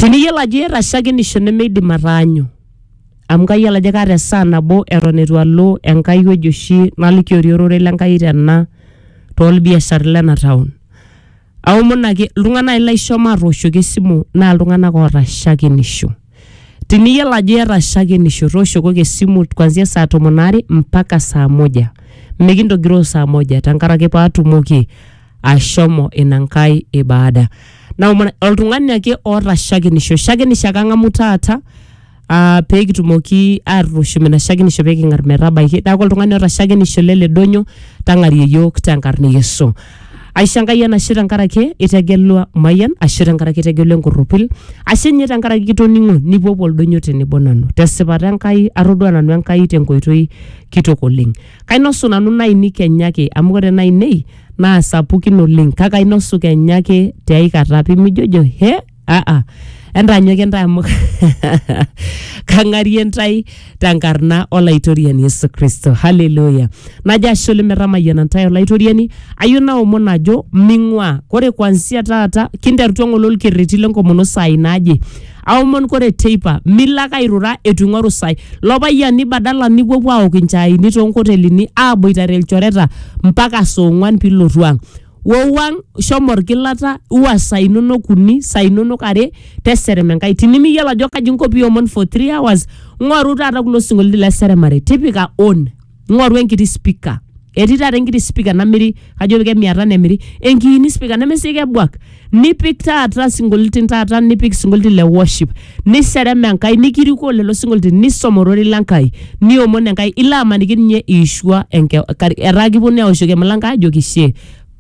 tiniyiolo ajo iyata shakenisho nemeidim ataanyu amu kayiolo ajo kaata esaa nabo eton eitu alo enkai wueji oshi nalikiori ororei lenkai tena tolbiashar lena town aomonaki iltung'anak ai laisho matooshoki esimu naa iltung'anak oota shakenisho tiniyiolo ajo iyata shakenisho tooshokoki esimu kwanzia saa tomon aare mpaka saa moja mikintogiroo saa moja tenkaraki paatumoki ashomo ina nkai ibada naomon oltung'ani ake oota shakenisho shakenisho ake ang'amu taata ah, pee kitumoki atushum ina shakenisho pee king'ar metabaiki neeku oltung'ani oota shakenisho lele donyo tang'arie yiok tenkarna e Yesu aisho enkai enashe tenkaraki itegelua mayian ashu tenkaraki itegelua enkurrupil ashe ninye tenkaraki kitoning'o nipuopuo oldonyo tenebo nanu tesipata enkai atodua nanu enkai tenkoitoi kitok oleng Kainosu nanu nainei kenya ake amu ore nainei naa sapukin oleng kake ainosu kenya ake te ai kata pimijojo he aa entaanyoki intae amu kang'arie intae tenkarna olaitoriani Yesu Kristo. Haleluya! Najo ashe oleng metamayiana intae olaitoriani, ayieu naomon ajo ming'uaa. Ore kuanzia taata kinterutua ng'ole olkerreti lenkomono saai naaje aomon kore teipa milo ake airura eitu ing'oru sai lo payiani badala nipuopuo aok inchaini toonkotelini aaboitare ilchoreta mpaka saa ong'uan piilotu ang wou ang shomo orgilata iwa sai inonok uni sai inonok are teserem enkai tinimiyiolo ajo kaji inko piomon for three hours ng'oru taata kulo sinkolioitin le seremare tipika on ng'oru enkiti spika etii taata enkiti spika namiri kajo ke mia tano emiri enkiini spika nemesii kebuak nipik taata sinkolioitin taata nipik sinkolioitin le worship niserem enkai nikirikoo lelo sinkolioitin nisom ororei lenkai niomon enkai ilo amaniki ninye iishua enke kar- etaa kiponu aoshoki emilango ajoki shie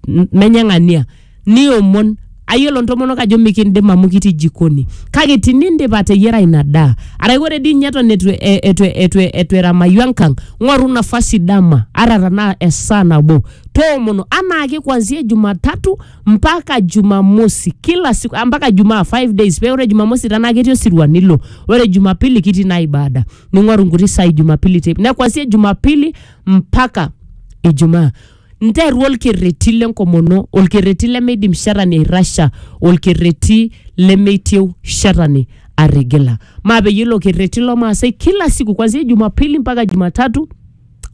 M- menye ng'ania niomon ayiolo ntomonok ajo mikindim amu kitii jikoni kake tinindip ateyiara ina daa arake ore dii ninye eton etu, e- etu, etu, etu eramayu enkang ng'oru nafasi dama ata tanaa esaa nabo toomono anaake kuanzia jumatatu mpaka jumamosi kila siku ampaka jumaa five days paa ore jumamosi tenaa ketii osirua nilo ore jumapili kitii naa ibada ning'oru nkuti saai jumapili teipa ne kuanzia jumapili mpaka ijumaa. nteru olkerreti lenkomono olkerreti lemeidim shetani airrasha olkerreti lemeitieu shetani atigila maa peyie ilo kerreti lomaasai kila siku kwanzia jumapili mpaka jumatatu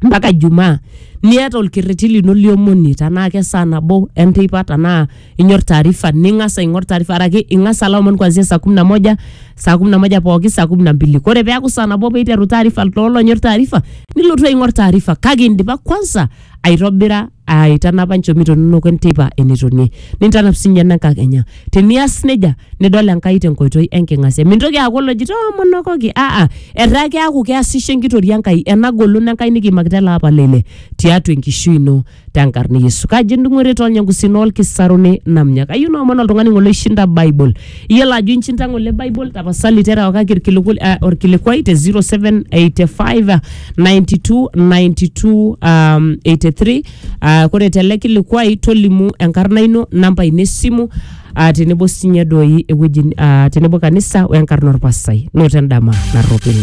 mpaka jumaa niata olkerreti lino liomonie tanaa kesaa nabo enteipa tanaa inyor taarifa ning'as aing'or taarifa araki ing'as alo omon kuanzia saa kumi na moja saa kumi na moja pooki saa kumi na mbili kore peaku saa nabo peiteru taarifa loolonyor taarifa nilotu aing'or taarifa kake indipa kwanza aitobira aitanapa nchomito inonok enteipa enetonie nintanap sinye enenkakenya tenias nejia nidol enkai tenkoitoi enking'asia mintoki aaku olojito omonokoki aa etaa keaku keasisho enkitoria enkai ena golon enkai nikiimakita ele apa leile tiatua enkishui ino tenkarna yesu kaji endung'ore tolnyangusin olkisaruni namnya kayieu naomon oltung'ani ng'ole oishinda bible iyiolo ajo inchinda ng'ole bible tapasali terewakaki irkiliku eh, orkilikuai te 0785 92 92 um, 83 uh, kore tele kilikuai tolimu enkarna ino namba ino esimu uh, tenebo sinye doi ewueji uh, tenebo kanisa wenkarna orpasai noto endama narropil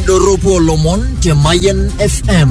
Doropo Lomon te Mayen FM.